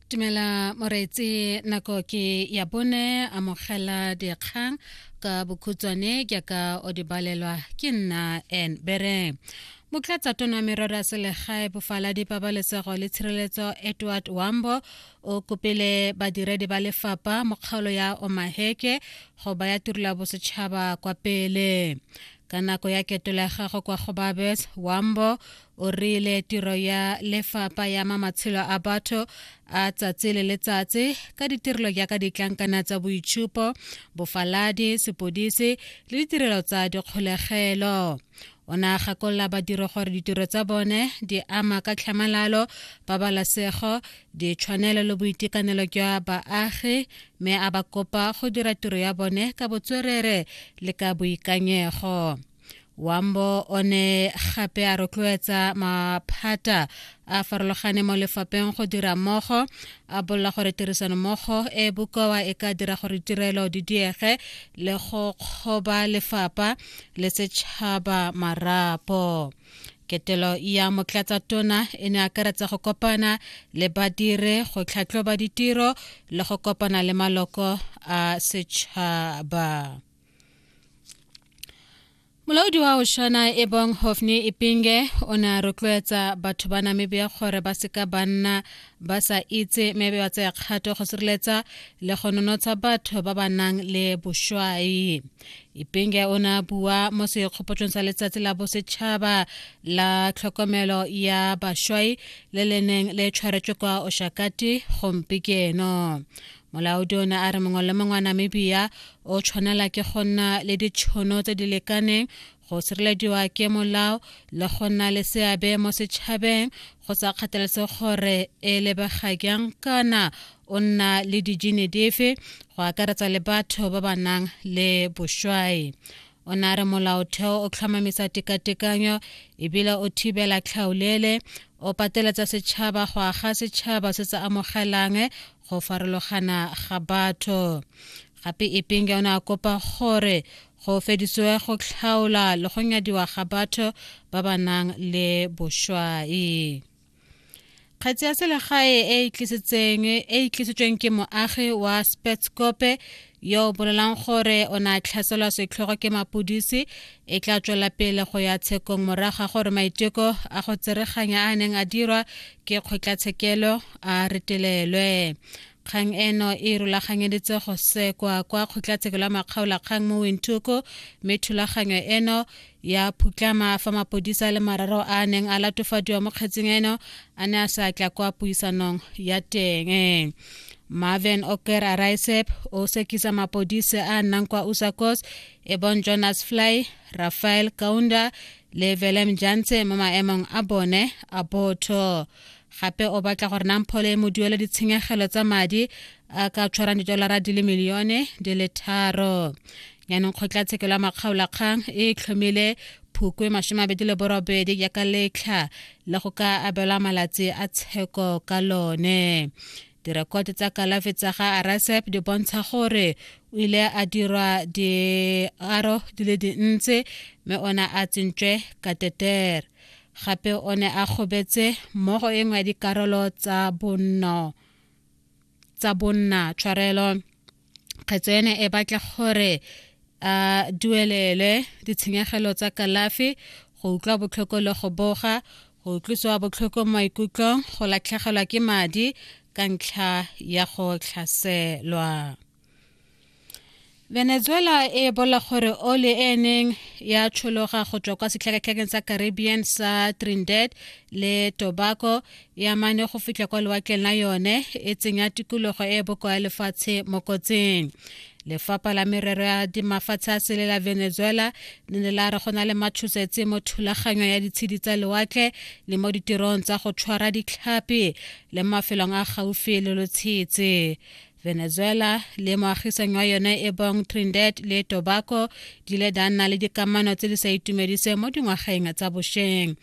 Tumela Moretsi nako ke ya bone amogela dikgang ka bokhutswane ke ka o di balelwa ke nna en bere motlatsa tona wa merero ya selegae bofaladi pabalesego le tshireletso edward wambo o kopile badiredi ba lefapha mo kgaolo ya omaheke go baya turula bosetšhaba kwa pele ka nako ya ketolego kwa go babes wambo o rile tiro ya lefapa ya ma matshelo a batho a tsatsi le letsatsi ka ditirelo jaaka ditlankana tsa boitshupo bofaladi sepodisi le ditirelo tsa dikgolegelo o ne a gakolola badiri gore ditiro tsa bone di ama ka tlhamalalo pabalesego ditshwanelo le boitekanelo jwa baagi mme a ba kopa go dira tiro ya bone ka botswerere le ka boikanyego wambo o ne gape a rotloetsa maphata a farologane mo lefapeng go dira mmogo a bolela gore tirisano mmogo e bokoa e ka dira gore tirelo di diege le go kgoba lefapa le setšhaba marapo ketelo ya motlatsa tona e ne akaretsa go kopana le badire go tlhatlhoba ditiro le go kopana le maloko a setšhaba molaodi wa oshana ebong hofni ipinge o ne a rotloetsa batho ba namibia gore ba seka ba nna ba sa itse mme be ba tsaya kgato go sireletsa le go nonotsha batho ba ba nang le boshwai ipinge o ne a bua mo sekgopotsong sa letsatsi la bosetšhaba la tlhokomelo ya bashwai le le neng le tshwaretswe kwa oshakati gompikeno molaodi o ne a re mongwe le mongwe wa namibia o tshwanela ke go nna le ditšhono tse di lekaneng go sirelediwa ke molao le go nna le seabe mo setšhabeng go sa kgathalese gore e lebega jang kana o nna le dijine dife go akaretsa le batho ba ba nang le bošwai o ne a re molaotheo o tlhomamisa tekatekanyo ebile o thibela tlhaolele o pateletsa setšhaba go aga setšhaba se se amogelang go farologana ga batho gape ipinge o ne a kopa gore go fedisiwe go tlhaola le go nyadiwa ga batho ba ba nang le bošwai kgetsi ya selegae e e tlisitsweng ke moagi wa spetscope yo o bolelang gore o ne a tlhaselwa setlhogo ke mapodisi e tla tswela pele go ya tshekong morago ga gore maiteko a go tsereganya a neng a dirwa ke kgotlatshekelo a retelelwe kgang eno e rulaganyeditse go sekwa kwa kgotlatshekelo ya makgaolakgang mo wintoko mme thulaganyo eno ya phutlama fa mapodisa le mararo a a neng a latofadiwa mo kgetseng eno a ne a sa tla kwa puisanong ya teng marvin oker araisep o sekisa mapodise a nnang kwa usakos e bong jonas fly rafael kaunda le velem jantse mo maemong a bone a botho gape o batla gore namphole e mo duele ditshenyegelo tsa madi a ka tshwarang didolara di le milione di le tharo yaanong kgotlatshekelo ya makgaolakgang e tlhomile phukwe masome abedi le borobedi ya ka letlha le go ka abelwa malatsi a tsheko ka lone direkoto tsa kalafi tsa ga arasep di bontsha gore o ile a dirwa diaro di le dintsi mme ona a tsentswe kateter gape o ne a kgobetse mmogo e nngwe ya dikarolo tsa bonno tsa bonna tshwarelo kgetso ene e batla gore a duelelwe ditshenyegelo tsa kalafi go utlwa botlhoko le go boga go utlwisiwa botlhoko maikutlong go latlhegelwa ke madi ka ntlha ya go tlhaselwa venezuela e bola gore oli e neng ya tshologa go tswa kwa setlhakatlhakeng sa caribbean sa trinidad le tobago ya mane go fitlha kwa lewatleng la yone e tsenya tikologo e e bokoa ya lefatshe mo kotsing lefapha la merero ya dimafatshe a sele la venezuela le ne la re go na le matshosetse mo thulaganyo ya ditshedi tsa lewatle le mo ditirong tsa go tshwara ditlhapi le mafelong a gaufi le lotshetse venezuela le moagisang wa yone e bong trinidad le tobaco di ile da nna le dikamano tse di sa itumediseng mo dingwageng tsa bošweng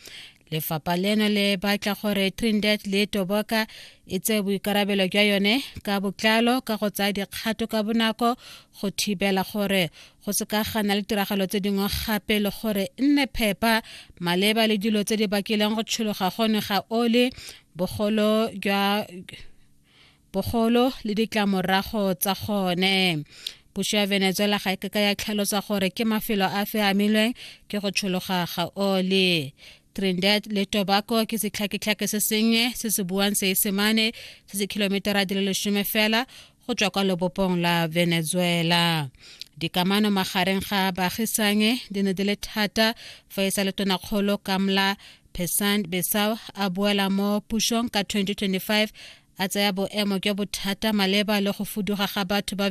lefapha leno le batla gore trinidad le toboka e tse boikarabelo jwa yone ka botlalo ka go tsaya dikgato ka bonako go thibela gore go se ka gana le tiragalo tse dingwe gape le gore nne phepa maleba le dilo tse di bakileng go tshologa gone ga ole bogolo jwa bogolo le ditlamorago tsa gone puso ya venezuela ga e keka ya tlhalosa gore ke mafelo a fe amilweng ke go tshologa ga oli trinidad le tobago ke setlhaketlhake se sennye se se buang seesemane se se kilometera di le lesome fela go tswa kwa lebopong la venezuela dikamano magareng ga baagisanyi di ne di le thata fa e sa le tonakgolo kamla Pesant Besau a boela mo pusong ka 2025 a tsaya boemo jwa bothata maleba le go fuduga ga batho ba